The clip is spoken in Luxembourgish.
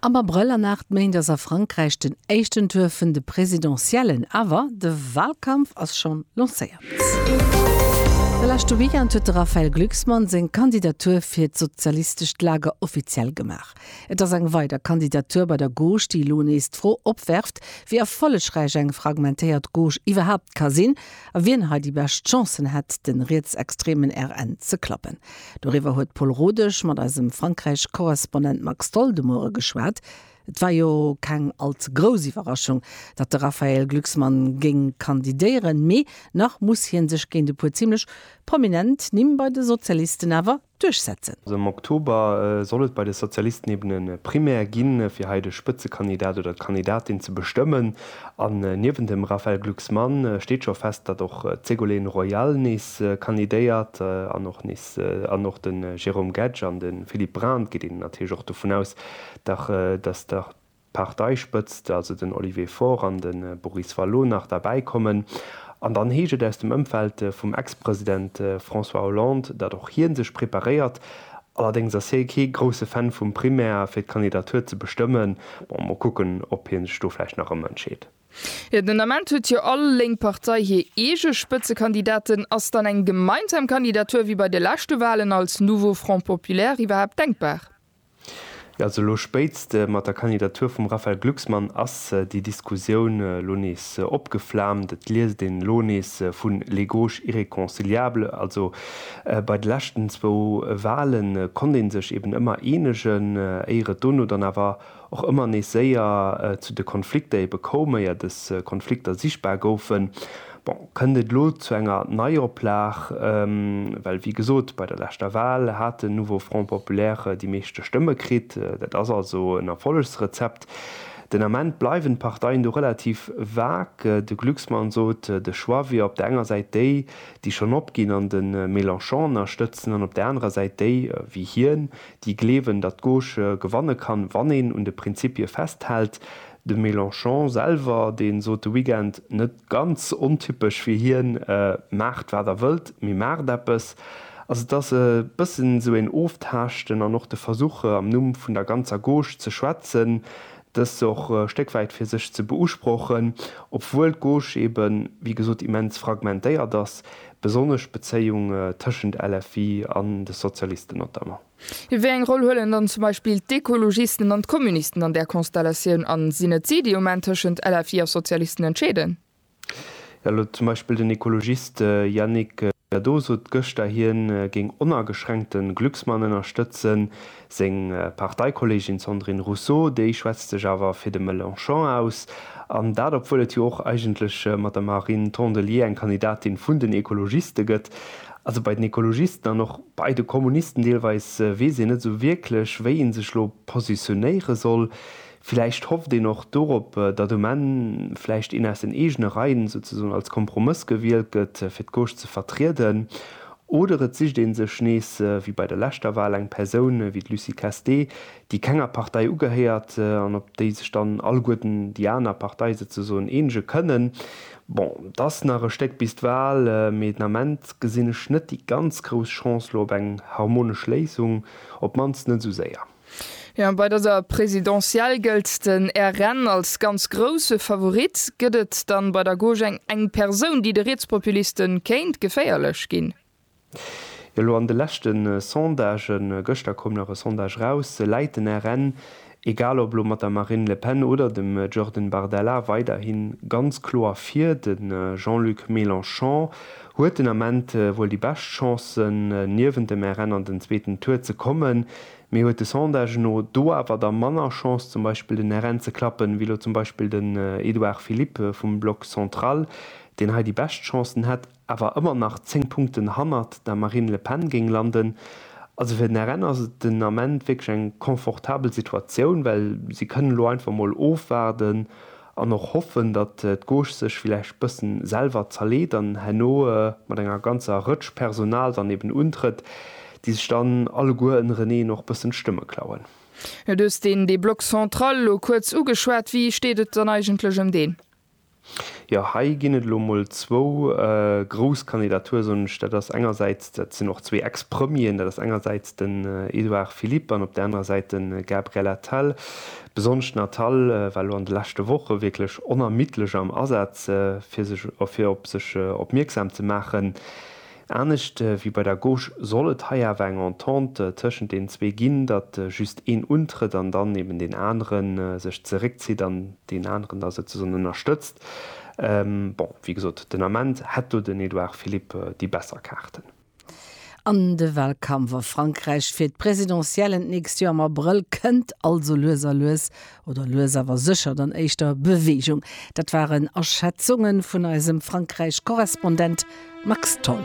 Am Abrëll an 8 Méint ass a Frankräich den éischten Tour vun de Presidentiellen, awer de Walkampf ass schonn lancéiert. De leschte Weekend huet de Raphaël Glucksmann seng Kandidatur fir d'sozialistescht Lager offiziell gemaach. Et ass eng weider Kandidatur bei der Gauche, déi elo nees d'Fro opwerft, wéi erfollegräich eng fragmentéiert Gauche iwwerhaapt ka sinn a wien hei déi bescht Chancen hätt, de rietsextremen RN ze klappen. Doriwwer huet d'Paule Rodesch mat eisem Frankräich-Korrespondent Max Tholl de Muere geschwat. Et war jo keng all ze grouss Iwwerraschung, datt de Raphaël Glucksmann géing kandidéieren, mee nach muss hie sech géint e puer zimlech prominent Nimm bei de Sozialisten awer duerchsetzen. Am Oktober soll et bei de Sozialisten eben e Primaire ginn, fir hei de Spëtzekandidat oder d'Kandidatin ze bestëmmen. An niewent dem Raphaël Glucksmann steet scho fest, datt och d'Ségolène Royal nees kandidéiert an och nees an och de Jérôme Gege an de Philippe Brand, geet een natierlech och dovun aus, datt d'Parteispëtzt, also den Olivier Faure an de Boris Vallaud nach derbäi kommen. An dann heescht et aus dem Ëmfeld vum Ex-President François Hollande, datt och hie sech preparéiert, Allerdéngs ass hie kee grousse Fan vum Primaire fir d'Kandidatur ze bestëmmen. Bon, mol kucken, ob hie sech do vläicht nach ëmentscheet. Jo, den Ament huet jo all lénk Partei hir eege Spëtzekandidaten. Ass dann eng gemeinsam Kandidatur wéi bei de leschte Walen als Nouveau Front Populaire iwwerhaapt denkbar? Also elo spéitst mat der Kandidatur vum Raphaël Glucksmann ass déi Diskussioun elo nees opgeflaamt. Et liest een elo nees vun les gauches irréconciliables. Also bei de leschten zwou Wahle konnt ee sech eben ëmmer eenegen, éier et dono dann awer och ëmmer nees séier zu de Konflikter ebe koum, éier dës Konflikter sichtbar goufen. Bon, kënnt et elo zu enger Neioplag? Well wéi gesot, bei der leschter Wal hat den Nouveau Front Populaire déi meeschte Stëmme kritt. Dat ass also en Erfollegsrezept. Den Ament bleiwen d'Parteien do relativ vague. De Glucksmann sot, de Choix wier op der enger Säit déi, déi schonn opginn an de Mélenchon ënnerstëtzen, an op der anerer Säit déi, wéi hien, déi gleewen, datt d'Gauche gewanne kann, wann een un de Prinzippie festhält. De Mélenchon selwer, dee sot de Weekend, net ganz ontypesch fir hien, Maacht wat der wëllt, mee maacht eppes. Also et ass e bëssen esou een Oftaaschten an och de Versuch, am Numm vun der ganzer Gauche ze schwätzen, dëst och e Stéck wäit fir sech ze beusprochen, obwuel d'Gauche eben, wéi gesot, immens fragmentéiert ass, besonnesch d'Bezéiung tëschent LFI an de Sozialisten notamment. Wéi eng Roll huelen dann zum Beispill d'Ekologisten an d'Kommunisten an där Konstellatioun? A sinn et si, déi um Enn tëschent LFI a Sozialisten entscheeden? Jo, elo zum Beispill den Ekologist Yannick Jadot sot gëschter, hie géing onageschränkte Glucksmann ënnerstëtzen. Seng Parteikolleegin Sandrine Rousseau, déi schwätzt sech awer fir de Mélenchon aus. An dat obwuel et jo och eigentlech mat der Marine Tondelier eng Kandidatin vun den Ekologiste gëtt. Also bei den Ekologisten an och bei de Kommunisten deelweis weess een net esou wierklech, wéi ee sech elo positionéiere soll. Villäicht hofft een och dorop, datt um Enn vläicht een aus den eegene Reien souzesoen als Kompromëss gewielt gëtt, fir d'Gauche ze vertrieden. Oder et sicht ee sech nees, wéi bei der leschter Wal, eng Persoun wéi d'Lucie Castée, déi kenger Partei ugehéiert an op déi sech dann alleguerten déi aner Partei souzesoen eenege kënnen. Bon, et ass nach e Stéck bis d'Wahl, mee den Ament gesinn ech net déi ganz grouss Chance lo op eng harmonesch Léisung, op d'mannst net esou séier. Jo, bei dëser Présidentielle gëllt den RN als ganz grousse Favorit. Gëtt et dann bei der Gauche eng Persoun, déi de Rietspopuliste kéint geféierlech ginn? Elo an de leschte Sondagen, gëschter koum nach e Sondage raus, läit den RN, egal ob elo mat der Marine Le Pen oder dem Jordan Bardella, weiderhi ganz kloer vir. De Jean-Luc Mélenchon huet den Ament wuel déi bescht Chancen, niewent dem RN an den zweeten Tour ze kommen, mee huet de Sondage no do awer da manner Chance, zum Beispill den RN ze klappen, wéi elo zum Beispill den Edouard Philippe vum Bloc Central, deen hei déi bescht Chancen hätt. awer ëmmer nach 10 Punkten hannert der Marine Le Pen géing landen. Also fir den RN ass et den Ament wierklech eng confortabel Situatioun, well si kënnen elo einfach mol ofwaarden an och hoffen, datt d'Gauche sech villäicht bësse selwer zerleet an herno mat enger ganzer Rëtsch Personal dann eben untrëtt, déi sech dann alleguer ënnereneen och bëssen d'Stëmme klauen. Du hues deen dee Bloc central elo kuerz ugeschwat. Wéi steet et dann eigentlech ëm deen? Jo, hei ginn et elo mol zwou grouss Kandidature, soen ech. Dat ass engersäits, dat sinn och zwee Ex-Premieren, dat ass engersäits den Edouard Philippe an op där anerer Säit de Gabriel Attal. Besonnesch den Attal war elo an de leschte Woche wierklech onermiddlech am Asaz, fir sech, fir op sech opmierksam ze maachen. Anescht wéi bei der Gauche soll et hei awer eng Entente tëschent den zwee ginn, datt just een untrëtt an dann eben deen anere sech zeréckzitt an deen aneren da souzesoen ënnerstëtzt. Bon, wéi gesot, den Ament hätt do den Edouard Philippe déi besser Kaarten. An de Walkampf a Frankräich fir d'Presidentiellen d'nächst Joer am Abrëll kënnt also lues a lues oder lues awer sécher dann éischter Beweegung. Dat waren Aschätzunge vun eisem Frankräich-Korrespondent Max Tholl.